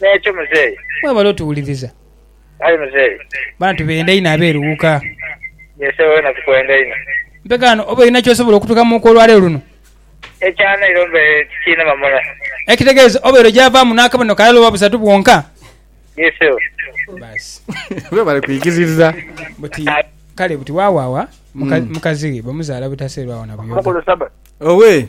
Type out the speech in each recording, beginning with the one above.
N'ekyo muzeeyi. Webale otuwuliriza. Aye muzeeyi. Bana tubenda inho abeeruwuka. Yee sebo wena tukwenda inho. Mpekaano oba olina ky'osobola okutukamuuka olwaleero luno? Ekya nairo mbaire tikiinema muno. Ekitegeeza obaire ogyavaamu n'akabonero kalala oba busatu bwonka? Yee sebo. Baasi. Webale kwigiririza. Buti kale buti waawaawa mukazi we bamuzaala butaseerwawo na buyoga. Omukulu Sabbath. Owee.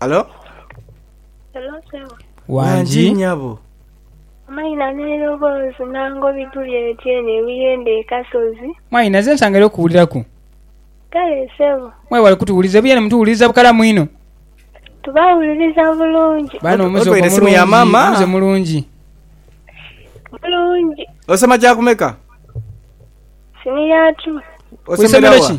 Halo? Hello sebo. Wangi. Wangi nyabo. Amaina n'eroboozi nango bituli eyo eno ebuyende e Kasozi. Mwai naze nsangere okuwuliraku. Kale sebo. Mwebale kutuwuliriza ebuyende mutuwuliriza bukalamu inho. Tubawuliriza bulungi. Baana omuze ogwo mulungi muze mulungi. Bulungi. Osoma kyakumeka? Siniya two. Osemera wa?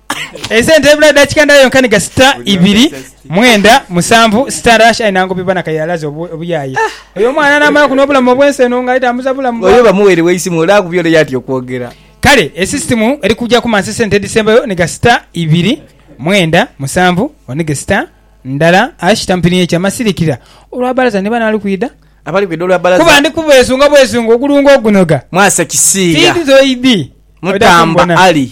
Esente ebula edakika ndala yonka ni gasita ibiri mwenda musanvu sita Rush aye nangoba iba nakayira alaze obuyaye oyo omwana namala kuno obulamu obwensi eno nga atambuza bulamu bwa Oyo bamuwerewo eisimu ole akubye ole yatya okwogera. Kale esisitimu eri kujaku mansa esente edisembayo ni gasita ibiri mwenda musanvu one gesita ndala Ash tampiniye kya masirikira olwa balaza ni bano ali kwida Abali kwida olwa balaza. kuba ndi kubwesunga bwesunga ogulungo ogunoga Mwasa kisiiya. fiidhi zoidhi oida mutamba kumbona. Ali.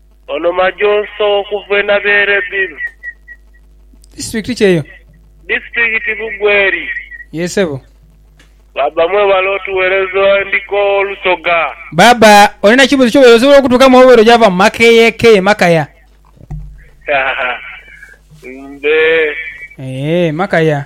Ono Majoso okuva e Nabeere bil. Disitulikiti ki eyo? Disitulikiti Bugweri. Yee ssebo. Baaba mwebale otuwereza endiko Lusoga. Baaba olina ekibuzo kyobeire osobola okutukamu oba obeire ojava mumakeyekeye makaya? Haa mbe. Eeh makaya.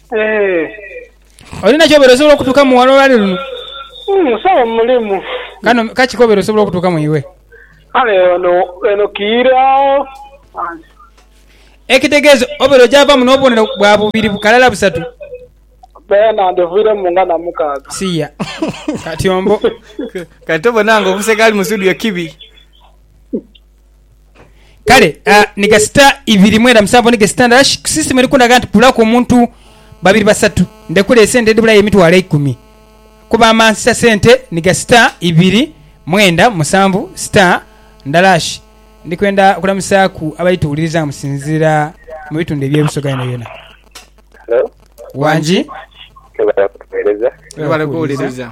Olina kyobere osobola okutuka mu wano olwali luno? Musawo hmm, mulimu. Kano kaki kobere osobola okutuka mu iwe? Kale ono eno kiira ekitegeeza obere ojava muno obubonero bwa bubiri bukalala busatu bena ndivire mu nga na mukaaga siya kati ombo kati obona nga omuseka ali mu studio kibi Kale uh, ni gasita ibiri mwenda musanvu ni gasita ndala shi, sisitimu eri kundhaga nti kulaku omuntu babiri basatu ndhekule esente edhibulayo emitwalo eikumi kuba amansisa sente ni gasita ibiri mwenda musanvu sita ndala shi. Ndi kwenda kulamusaaku abali tuwuliriza nga musinziira mu bitundu eby'e Busoga yonayona. Hello, Wangi. webale kutuweereza. Webale kuwuliriza.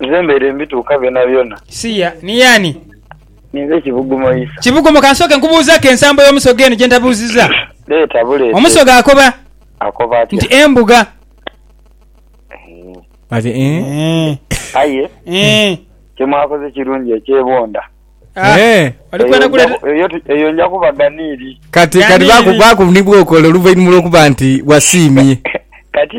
Nze mbaire mbituuka byonabyona. Siya, niye ani? Ninze Kibugumo Isa. Kibugumo, ka nsooke nkubuuzeko ensambo y'Omusoga eno gye ntabuuzizza. Leeta buleete. Omusoga akoba. Akoba atya? Nti embuga. Ati eeh. Aye kye mwakoze kirungi ekyebonda. Eyo nja kuba ganiiri. Kati kati baku baku ni bw'okola oluvainhuma lw'okuba nti wasiimye. Kati.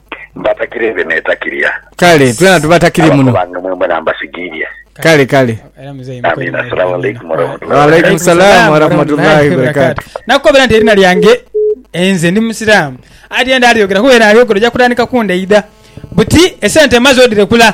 Mbatakire nze netakirira. Kale twena tubatakire muno. Abako bange mwemwena mbasigiirye. Kale kale. Era muzeeyi mukole Amiina. mwebale Assalamu alaikum inho. warahmatullahi Wa wabarakatuh. alaikum salaam warahmatullahi wabarakatuh. Nakukobera nti erina lyange enze ndi musiramu ati enda alyogera kuba era ayogera oja kutandika kundaidha buti esente maze odirekula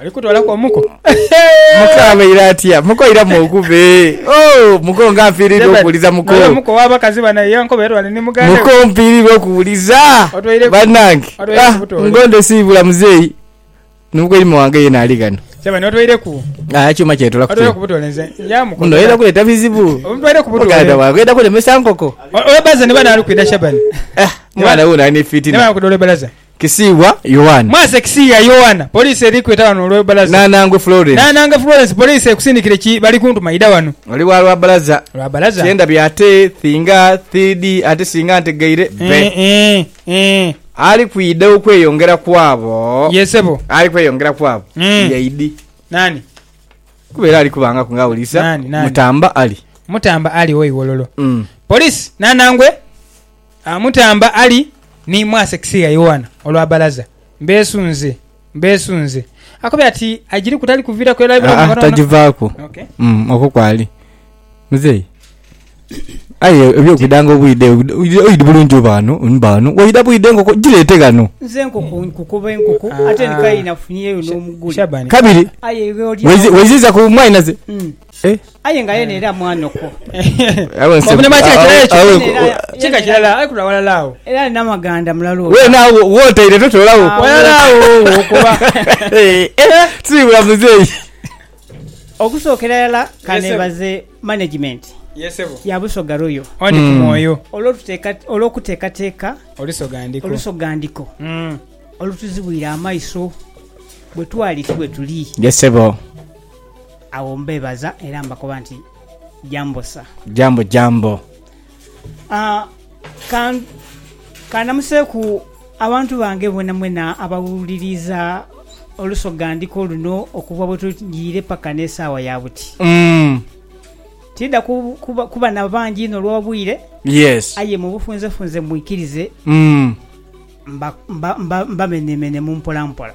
Oli kutolaku omuko? Muko abaire atya? Muko iramu okube. Oh, muko nga mpirirwa okuwuliza muko. Oyo muko wa bakazi bana ye nkoba erwale ni muganda we. Muko mpirirwa okuwuliza banange. Ah, ngonde siibula muzeeyi. Ni muko imo wange yena ali ghano. Sebane otweireku. Ah, ekyuma kyetola kutola. Otweireku butola nze. Ya muko. Muno oyenda kuleta bizibu. Otweireku butola. Muganda wange oyenda kulemesa nkoko. Oyo baza ni bana ali kwida Shabani. Ah, mwana wuno ali ni fitina. Ni bana kudole balaza. Kisiiwa Yowana. Mwase Kisiiya Yowana, Poliisi eri kweta wano olwe balaza. Nanangwe Florence. Nanangwe Florence, Poliisi ekusindikire ki bali kuntuma idha wano. Oli wa lwa balaza. Lwa balaza. Kye ndabye ate thinga thiidi ate singa ntegeire be. Eeh eeh eeh. Ali kwidha okweyongera kwabo. Yee sebo. Ali kweyongera kwabo. Eeh. Ye idi. Nani? Kuba era ali kubangaku nga awulirisa. Nani, nani? Mutamba Ali. Mutamba Ali owe Iwololo. Poliisi, Nanangwe. Amutamba ali ni mwase kisiigha Yoanna olwa balaza. Mbeesunze, mbeesunze. Akobye ati, Agiriku tali kuviiraku era aibulamu Aa, katono. tagivaaku. Okay. Mm, okwo kwali muzeeyi aye ebyokwidanga obwide obwide- oidha oidha bulungi oba ghano oba ghano waidha bwide enkoko gireete ghano Nze enkoko nkukuba enkoko Ah, ate ah. nikaye nafunyeyo n'omugule. Shabani. kabiri Aye iwe olya waizi- waiziza ku mwanaze Mm. Aye nga yena era mwana okwo. Kika kirala aye kulwa walala agho. Era alina amaganda mulalu oyo. Wena agho wotaire totola gho. Walala agho ogho kuba. Tusibula muzeyi. Okusokera irala kanebaze management ya Busoga Royal olwokutekateka olusogandiko olutuzibwire amaiso bwetwali ti bwetuli. Agho mbeebaza era mbakoba nti, Jambo sa. Jambo jambo. Ah, ka, ka namuseeku abantu bange bwenamwena abawuliriza olusogandhiko luno okuva bwe tujiire paka n'esaawa ya buti. Mm. Tiidha ku, kuba, kuba na bangi inho olw'obwire, Yes. aye mu bufunzefunze mwikirize Mm. mba, mba, mba, mbameneemenemu mpolampola.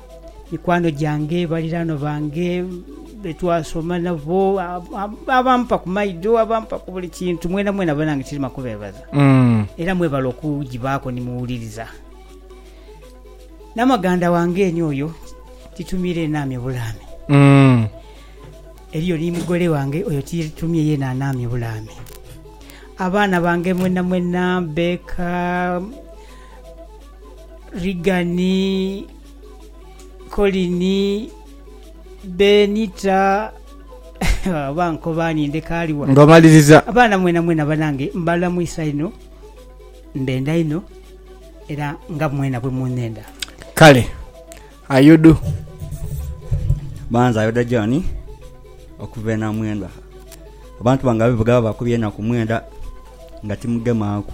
mikwano gyange, baliraanwa bange, be twasoma nabo, abampa ku maido, abampa ku buli kintu, mwena mwena banange kirima kubeebaza. Mm. Era mwebale okugibaaku ni muwuliriza. Namaganda wange eni oyo titumire naamye bulaame. Mm. Eriyo ni mugole wange oyo titumye yena anaamye bulaame. Abaana bange mwena mwena, Becca, Rigani, Kolini, Benita oba nkoba ani ndeka ali wa? Ng'omaliriza. Abaana mwenamwena banange mbalamwisa inho, mbenda inho era nga mwena bwe munnenda. Kale Ayudu. Ba nze Ayuda John okuva e Namwendwa. Abantu bange abeevuga babakubye enaku mwenda nga timugemaaku.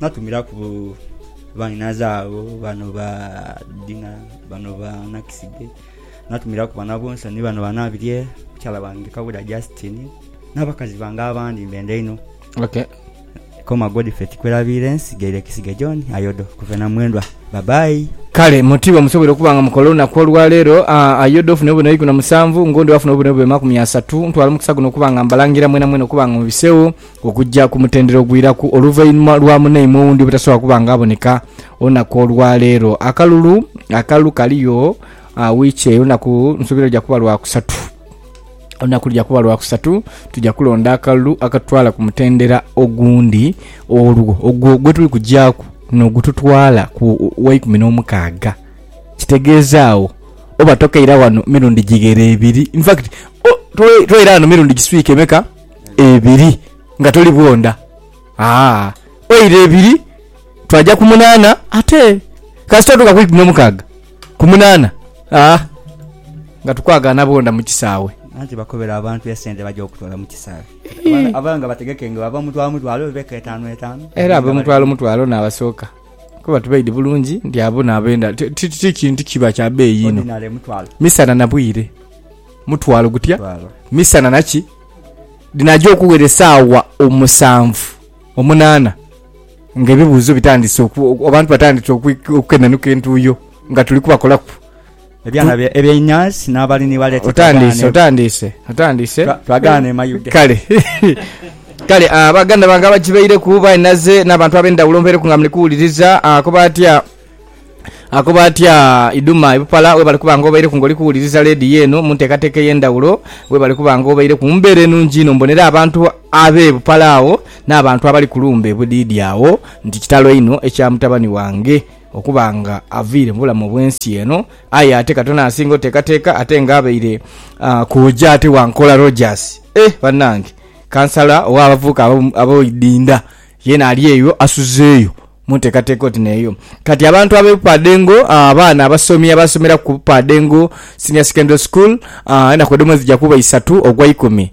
Natumiraku bainhaaze abo, bano ba Dina, bano ba Nakisige, natumiraku banabonsa ni bano banabirye, mukyala wange Kabuda Justine, n'abakazi bange abandi mbenda inho. Okay. Koma Godfrey Tikwerabiire nsigaire Kisige John Ayodo kuva e Namwendwa. Bye bye. Kale muti bwemusoboire okuba nga mukola olunaku olwaleero, Ayodo ofune obubonero ikumi na musanvu, Ngondo afune obubonero bube makumi asatu. Ntwala omukisa guno okuba nga mbalangira mwenamwena okuba nga mubisewo. Okugya ku mutendera ogwiraku oluvainhuma lwa munaimwe owundi obutasobola kuba nga aboneka olunaku olwa leero. Akalulu akalu kaliyo wiiki eyo olunaku nsubira luja kuba lwa kusatu. Olunaku luja kuba lwa kusatu tuja kulonda akalulu akatutwala ku mutendera ogundi olwo ogwo gwe tuli kugyaku nogututwala ku waikumi n'omukaaga. Kitegeeza agho oba tokeira wano mirundi gighere ebiri. In fact, tobeira wano mirundi giswika emeka? ebiri nga toli bwondha aa oira ebiri twaja ku munana ate kasita otuka ku ikumi no mukaga ku munana aa nga tukwagana bwondha mu kisaawe. Anti bakobere abantu esente baja okutwala mu kisaawe kati abaana abaana nga bategeke nga bava mutwalo mutwalo oba eka etanu etanu Era abo mutwalo mutwalo n'abasooka kuba tubaidhi bulungi nti abo n'abenda ti ti ti kintu kiba kya beeyi inho ordinary mutwalo. misana na bwire. Mutwalo gutya misana na ki? Dhinaja okuwera esaawa omusanvu omunaana nga ebibuuzo bitandise abantu batandise okukenanuka entuuyo nga tuli kubakolaku. Ebyana ebyenyansi n'abali ni baleeta. Otandiise, otandiise, otandiise. Twagaana e Mayuge. Kale kale baganda bange abagibaireku bainaze n'abantu ab'endhawulo nvaireku nga muli kuwuliriza. Akoba atya? Akoba atya Iduma Ibupala webale kuba nga obaireku nga oli kuwuliriza leediyo eno mu nteekateeka ey'endhawulo webale kuba nga obaireku mu mbeera enungi inho mbonere abantu ab'e Bupala agho n'abantu abali ku lumbe e Budhiidhi agho nti kitalo inho ekya mutabani wange okuba nga aviire mu bulamu obw'ensi eno aye ate katono asinga oteekateeka ate nga abaire kooja ate wa nkola Rogers eeh banange kansala ow'abavubuka ab'e Idinda yeena ali eyo asuzeeyo Mu nteekateeka oti n'eyo kati, abantu ab'ebupaadhengo, abaana abasomi abaasomera ku bupaadhengo, Senior Secondary School, enaku edho mwezija kuba isatu ogwa ikumi.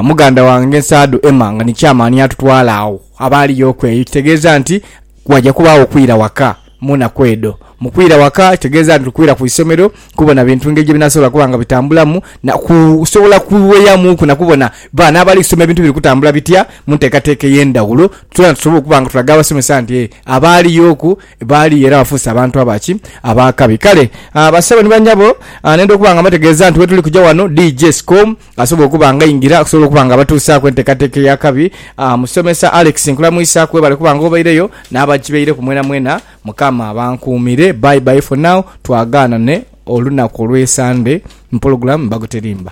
Muganda wange Nsaadhu Emma nga ni Chairman yatutwala agho abaaliyooku eyo, ekitegeeza nti waja kubaagho okwira waka mu naku edho. Mu kwira waka kitegeeza nti tukwira ku isomero kubona bintu ngeri gye binaasobola kuba nga bitambulamu na kusobola kuweyamuuku na kubona baana abali kusoma ebintu biri kutambula bitya mu nteekateeka ey'endhaghulo Twena tusobole okuba nga tulaga abasomesa nti abaaliyoku baali era bafuuse abantu aba ki? Ab'akabi. Kale bassebo ni bannyabo, nenda okuba nga mbategeeza nti wetuli kuja wano, DJ Scom asobola okuba nga aingira okusobola okuba nga abatuusaaku enteekateeka ey'akabi. Musomesa Alex nkulamwisaaku, webale okuba nga obaireyo, n'abagibeireku mwenamwena, Mukama abankuumire. Bye bye for now, twagaanane olunaku olw'e Sande mu pulogulaamu Mbago Terimba.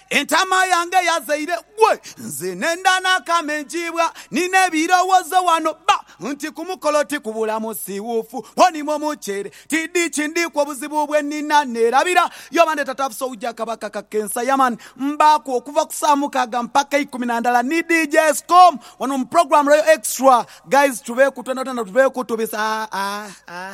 Entaama yange yazaire gwe. Nze nenda n'akamengiibwa ni n'ebirowoozo wano bba nti ku mukolo ti kubula musiwuufu ghonimo muceere. Tidhi kindhiiku obuzibu bwe nnina neerabira y'oba ne Tata Afisa ougya Kabaka Kaka ensa ya mani. Mbaaku okuva ku saa mukaaga mpaka ikumi na ndala ni DJ Scom wano mu program Royal Extra. Guys tuveeku twena twena tuveeku tubisa ah ah ah.